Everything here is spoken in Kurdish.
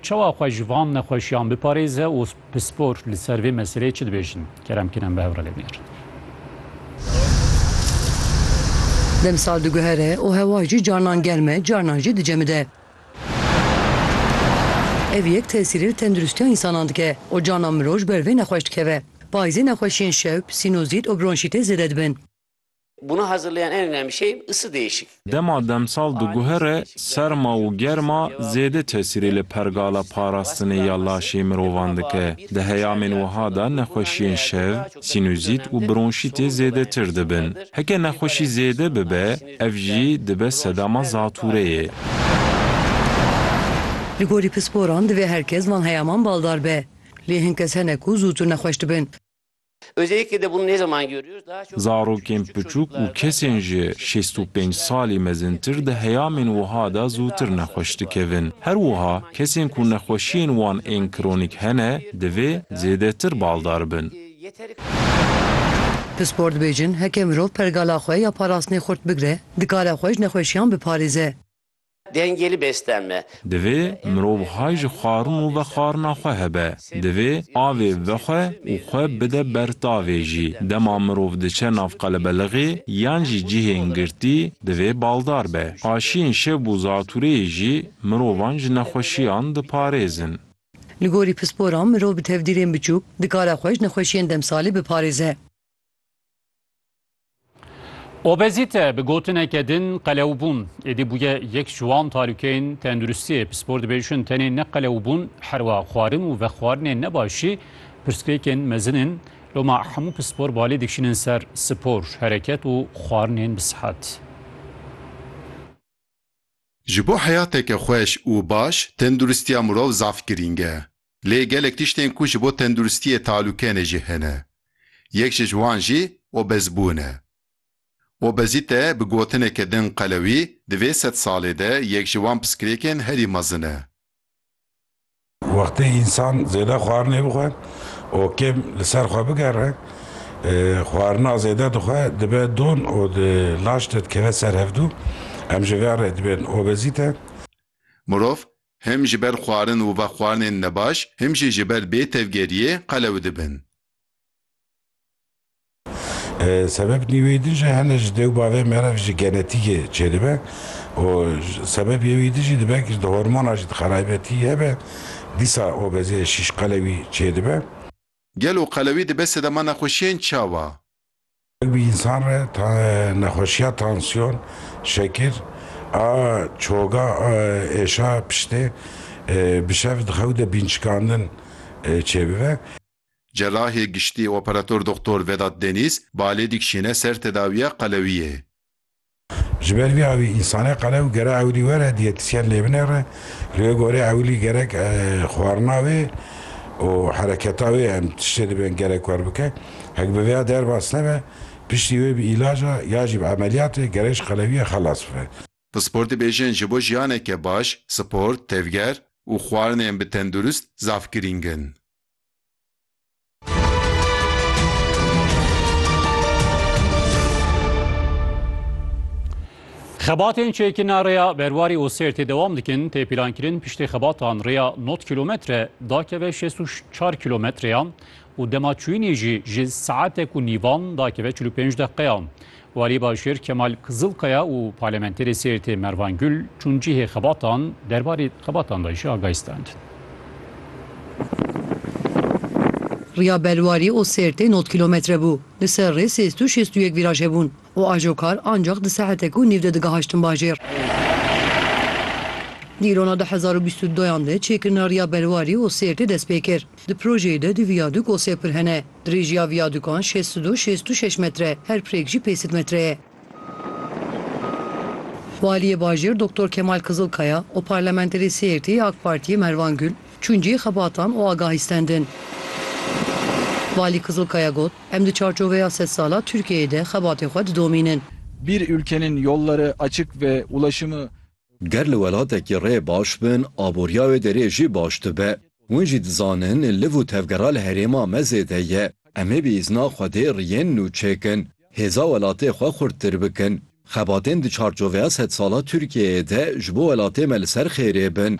Çawa xwe ji van nexweşiyan biparêze û pispor li ser vê meseleyê çi dibêjin? Kerem Kînan bi hev re lê bigere. Demsal diguhere û hewa jî carnan germ e, carnan jî dicemide. Ev yek tesîrê li tenduristiya însanan dike û carnan mirov ji ber vê nexweş dikeve. Payîzê nexweşiyên şewb, sînozît û bronşîtê zêde dibin. Buna hazırlayan en önemli şey ısı değişik. Dema demsal diguhere, serma û germa zêde tesîrê li pergala parastinê ya laşê mirovan dike. Di heyamên wiha de nexweşiyên şev, sînûzît û bronşîtê zêdetir dibin. Heke nexweşî zêde bibe, ev jî dibe sedama zatûreyê. Li gorî pisporan divê her kes van heyaman baldar be. Lê hin kes hene ku zûtir nexweş dibin. Zarokên piçûk û kesên ji şêst û pênc salî mezintir di heyamên wiha de zûtir nexweş dikevin. Her wiha kesên ku nexweşiyên wan ên kronîk hene divê zêdetir baldar bin. Pispor dibêjin heke mirov pergala xwe ya parastinê xurt bigire, dikare xwe ji nexweşiyan biparêze. Dengê li bêsten me. Divê mirov hay ji xwarin û vexwarina xwe hebe. Divê avê ve xwe û xwe bide ber tavê jî. Dema mirov diçe nav qelebelixê yan jî cihên girtî divê baldar be. Aşiyên şev û zatûreyê jî mirovan ji nexweşiyan diparêzin. Li gorî pisporan mirov bi tevdîrên biçûk dikare xwe ji nexweşiyên demsalî biparêze. Obezîte bi gotineke din qelewbûn êdî bûye yek ji wan talûkeyên tenduristiyê. Pispor dibêjin tenê ne qelewbûn herwa xwarin û vexwarinên nebaşî pirsgirêkên mezin in. Loma hemû pispor balê dikişînin ser spor, hereket û xwarinên bi sihet. Ji bo heyateke xweş û baş, tenduristiya mirov zaf girîng e. Lê gelek tiştên ku ji bo tenduristiyê talûke ne jî hene. Yek ji wan jî obezbûn e. Obezîte bi gotineke din qelewî di vê sed salê de yek ji wan piskirêkên herî mezin e. Wextê însan zêde xwarinê bixwe û kêm li ser xwe bigere, xwarina zêde dixwe dibe don û di laş de dikeve ser hevdû. Em ji ve re dibên obezîte. Mirov Him ji ber xwarin û vexwarinên nebaş, him jî ji ber bê tevgeriyê qelew dibin. Sebeb nî wê din jî hene ji dêw bavê me re ji genetîkê çêdibe û sebeb yê wî din jî dibe ku ji di hormona jî di xeraybetî hebe, dîsa obeziyê şîşqelewî çêdibe. Gelo qelewî dibe sedema nexweşiyên çawa? Bi însan re nexweşiya tansiyon, şekir a çoga a êşa piştê bi şev di xew de bînçikandin çêbibe. Cerahê Giştî Operator Doxtor Vedat Deniz, Balê dikşîne ser tedawiya qelewiyê. Ji ber vî avî însanê qele û gere ewilî were diyetisyen lê binêre, li wê gorî ewilî gerek xwarina wê û hereketa wê em tiştê dibên gerek wer bike. Hek bi vêya derbas nebe, piştî wê bi îlaca ya jî bi emeliyatê gerek ji qelewiyê xelas bibe. Pispor dibêjin ji bo jiyaneke baş, sport, tevger û xwarinên bi tendurist zaf girîng in. Xebatên çêkina rêya berwarî û sêrtê dewam dikin tê pîlankirin piştê xebatan rêya not kilometre dakeve şêst û çar kilometreyan û dema çûyînê jî ji saetek û nîvan dakeve çil û pênc deqeyan. Walî Başêr Kemal Kizilkaya û Parlamenterê Sêrtê Mervan Gul çûn cihê xebatan derbarê xebatan de jî agahî standin. Riya Belwarî û Sêrtê nod kîlometre bû. Li ser rê sê sed û şêst û yek vîraj hebûn û ajokar ancax di saetek û nîv de digihaştin bajêr. Dîrona du hezar û bîst û duyan de çêkirina Riya Belwarî û Sêrtê dest pê kir. Di projeyê de du viyadûk û sê pir hene. Dirêjiya viyadûkan şêst û du şêst û şeş metre, her pirêk jî pêncî metre ye. Waliyê Bajêr Doktor Kemal Kizilkaya û Parlamenterê Sêrtê yê AK Partiyê Mervan Gul çûn cihê xebatan û agahîstendin. Walî Kizilkaya got, Em di çarçoveya sed sala Tirkiyeyê de xebatê xwe didomînin. Bir ülkenin yolları açık ve ulaşımı Ger li welatekî rê baş bin, aboriya wê derê jî baş dibe. Hûn jî dizanin liv û tevgera li herêma me zêde ye. Em ê bi îzna Xwedê riyên nû çêkin, hêza welatê xwe xurttir bikin. Xebatên di çarçoveya sedsala Tirkiyeyê de ji bo welatê me li ser xêrê bin.